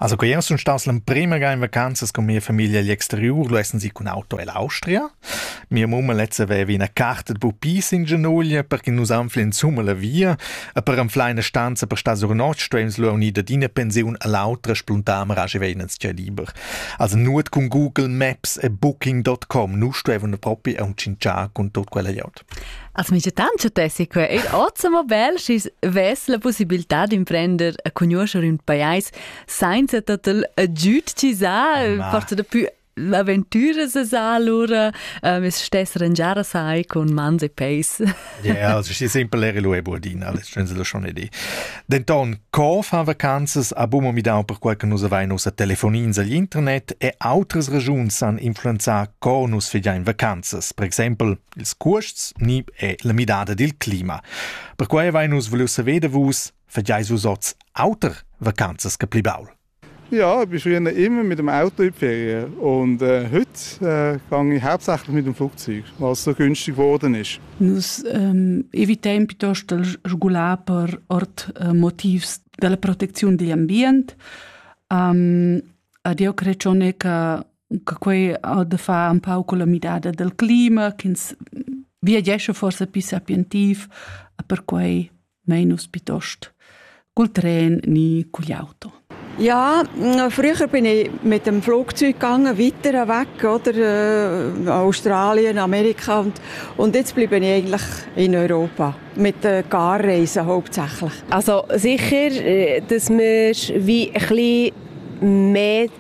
Also que sun stas l'emprema ga in vacanzas cun mia famiglia agl exteriur, lu essan si cun auto ell'Austria. Mia mamma lezza veva ina carta de pupis in genuglia perché nus anflin insumma la via e per anflar ina stanza per star sur notg stuems lu unir dad ina pensiun all'autra spluntamar aschi vein ins gia liber. Also nuot cun Google Maps e Booking.com, nu stuevan propi aunc tschintschar cun tot quella glieud. Als migiatants tessì que eir ozza bel schi's vess la pussibiltà d'imprender a cugnuoscher ün pajais sainza total agüd chi sa, Ma. forsa dapü l'aventüras sa lura, äh, me's stess rangiar sai con mans e peis. Ja, also si simpel era lu e buadina, alles schön se lo schon edi. Denton, co fan vacanzas abum midau per quai che nus avein ussa telefonins agl internet e outras regiuns san influenzar co nus figiain vacanzas. Per exempel ils cuosts ni è la midada dil clima. Perquei vein nus vuliu saver da vus, fagieis vus oz auter vacanzas che pli baul? Ja, ich bin früher immer mit dem Auto in die Ferien. Und äh, heute äh, gehe ich hauptsächlich mit dem Flugzeug, was so günstig geworden ist. Nus ähm, evitiamo piuttosto il regular per ort äh, motivs della protezione dell'ambiente. Um, ehm, a Dio creazione che che quei ha da far un pau con la midada del clima, ch'ins viagescha forse più sapientiv, per quei menus piuttost col tren ni cogli auto. Ja, früher bin ich mit dem Flugzeug gegangen, weiter weg, oder, äh, Australien, Amerika und, und jetzt bleibe ich eigentlich in Europa, mit den Garreisen hauptsächlich. Also sicher, äh, dass man wie ein bisschen mehr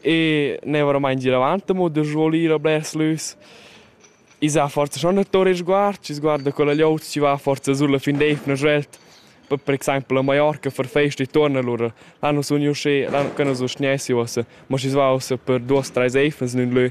e ne war mai in giravant mo da svolire blers lüs i sa forza schon a torre sguard ci sguarda con la liot ci va forza sulla fin d'efna svelt per per exempel a Mallorca per fest e torna lura l'anno sun io sche l'anno che non so schnessi ossa ma ci va ossa per duos tre efnas in lö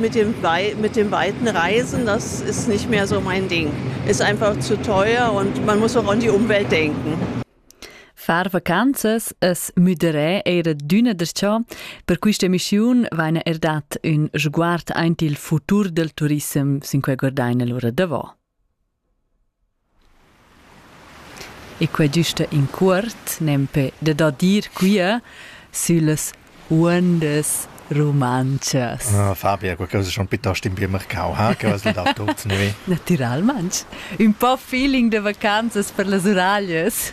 mit dem, mit dem weiten Reisen, das ist nicht mehr so mein Ding. Ist einfach zu teuer und man muss auch an die Umwelt denken. Far vacanzas es müderé era d'üna derciò, per quista emissiun vaina er dat ün sguard aint il futur del turissem sin quai guardaina lura davo. E quei güsta in cuort, nempe da da dir quia süllas uondas rumantschas. Ah, Fabia, qualcosa schon piuttost in pir marcau, ha? Che has dau tut, nui? Natüralmaing. Ün po feeling da vacanzas per las uraglias.